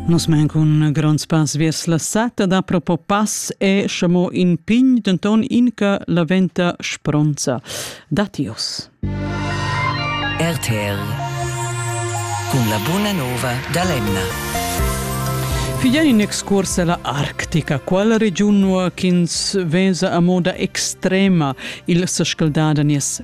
Nus men cun gronds pass viers la sata da propo pass e schamo in pign denton inca la venta spronza. Datius. RTL cun la buna nova da l'Emna. Figlia in excurs alla Arctica, qual regiun ins vesa a moda extrema il sescaldada nies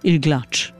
il glatsch.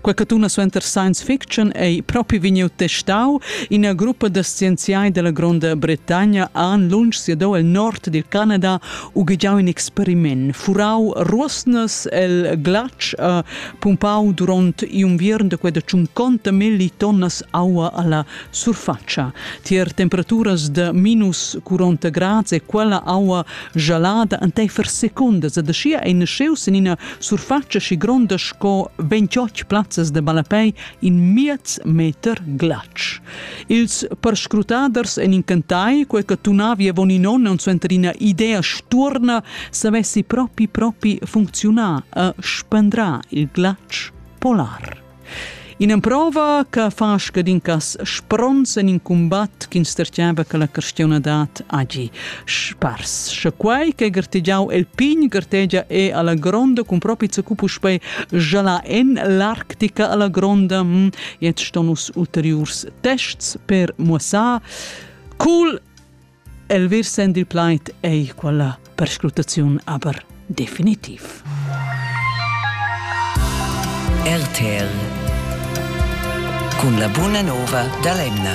Quei che tuna suenter science fiction ei propi vegniu testau. Ina gruppa da scienziai della Gronda Bretagna han lunsch siadau el nord dil Canada ughegiau in experiment, furau ruosnas el glatsch e pumpau duront in unviern de quella tschunconta milli tonnas aua alla surfatscha. Tier temperaturas da minus 40 grads e quella aua jalada enteifer secondas ed aschia ei nasceus en ina surfatscha schi gronda sco 28 plazzas de balapei in miez meter glatsch. Ils perscrutaders en incantai, quei che tunavi avon in onn und suenter ina idea sturna, savessi propi propi funzionar e spendra il glatsch polar. In'emprova che fa scadin cas spronts en in cumbat ch'instertgava che la cristianadad hagi spars. Sche quai che gartegiau el pign gartegia è alla gronda cun propi zacu puspei gialà en l'Arctica alla gronda, hm, jetzt sto nus ulteriurs tests per muossar. Cool El versend il plaid ei quella perscrutaziun aber definitiv. RTL cun la buna nova da l'Emna.